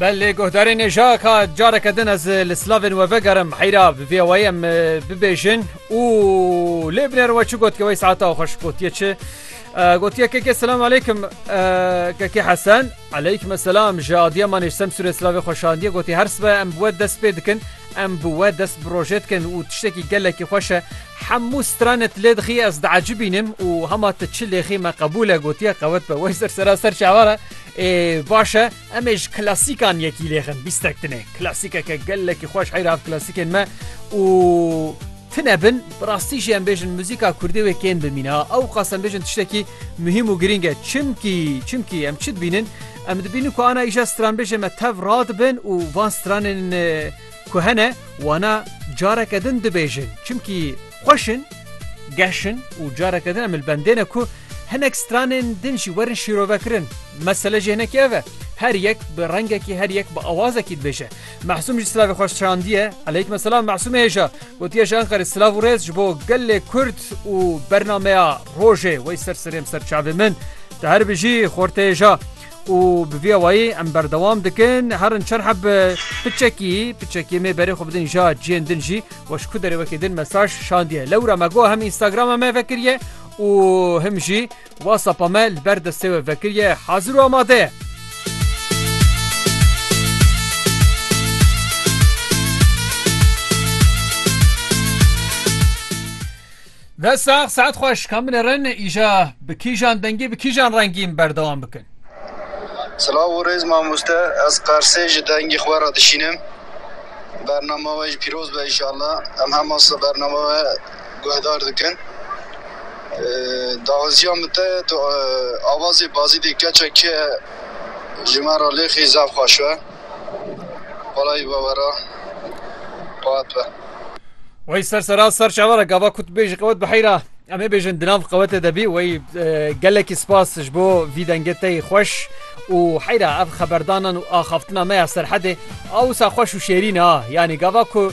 Belê guhdarê nêja ka careke din ez li slavên we vegerim heyra bi vê wayê em bibêjin û lê binêr we çi got ki wey saeta xweş gotiye çi gotiye kekê selam aleykum kekê hesen aleykum selam ji adiya manê sem sûrê slavê xweşandiye gotî her sibe em bi we dest pê dikin em bi we dest bi rojê dikin û tiştekî gelekî xweş e Hemû stranet lê dixî ez diecibînim û hema tu çi lêxî me qebûl e gotiye qewet be wey ser sera ser çawa re ê baş e em ê ji klasîkan yekî lêxin bîstek tune klasîkeke gelekî xweş heyra ev klasîkên me û tune bin bi rastî jî em bêjin muzîka kurdê wê kên bimîne ha ew qas em bêjin tiştekî muhîm û girîng e çimkî çimkî em çi dibînin em dibînin ku ana îja stranbêjê me tev radibin û van stranên Ku hene wana careke din dibêjin çimkî xweş in, geş in û careke din em li bendê ne ku hinek stranên din jî werin şîrovekirin. Mesele jî hinekî ev e. Her yek bi rengekî, her yek bi awazekî dibêje. Masûm jî silavê xwe şandiye. Eleykma silam Masûmê hêja. Gotiye ji Enqerê silav û rêz ji bo gelê Kurd û bernameya rojê. Wey ser serê em ser çavê min. Tu herbijî xortê hêja. û bi vî awayî em berdewam dikin herin çar heb bi çekî bi çekî mê berê xwe bidin ja ciyên din jî weş ku derê wekê din mesaj şandiye lewra me got hem Instagrama me vekiriye û him jî WhatsAppa me li ber destê we vekiriye hazir û amade ye. Dest sax saet xweş ka min rin îja bi kîjan dengî bi kîjan rengîn berdewam bikin. Silav û rêz mamoste ez qersê ji dengî xwe re dişînim bernama we jî pîroz be inşallah em hema se bernama we guhdar dikin daxwaziya min te tu avazê bazîdê keça ke ji me re lêxî zaf xweş be. Balayî vevera qat be. Wey ser sera ser çavara gava kut bêjî qewet bi heyra em ê bêjin di nav qewetê de bî wey gelekî spas ji bo vî dengê te yî xweş û heyra ev xeberdanan û axaftina me ya serhedê a wisa xweş û şêrîn a yanî gava ku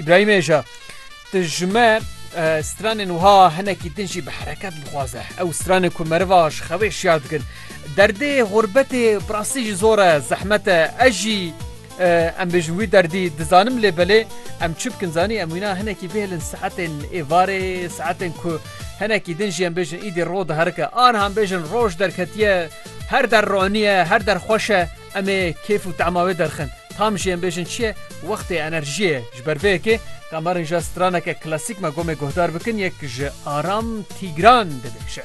Îbrahîm Êja Ti ji me stranên wiha hinekî din jî bi hereket bixwaze ew stranên ku meriva ji xewê şiyar dikin derdê xurbetê birastî jî zor e zehmet e ez jî em bêjin wî derdî dizanim lê belê em çi bikin zanî em wîna hinekî bêhilin saetên êvarê saetên ku hinekî din jî em bêjin îdî ro diherike anhan bêjin roj derketiye her der roniye her der xweş e Em ê kêf û tema wê derxin. Tam jî em bêjin çi ye? Wextê enerjiyê ye. Ji ber vê yekê Kamarên Jazz straneke klasîk me gomê guhdar bikin yek ji Aram Tîgran dibêje.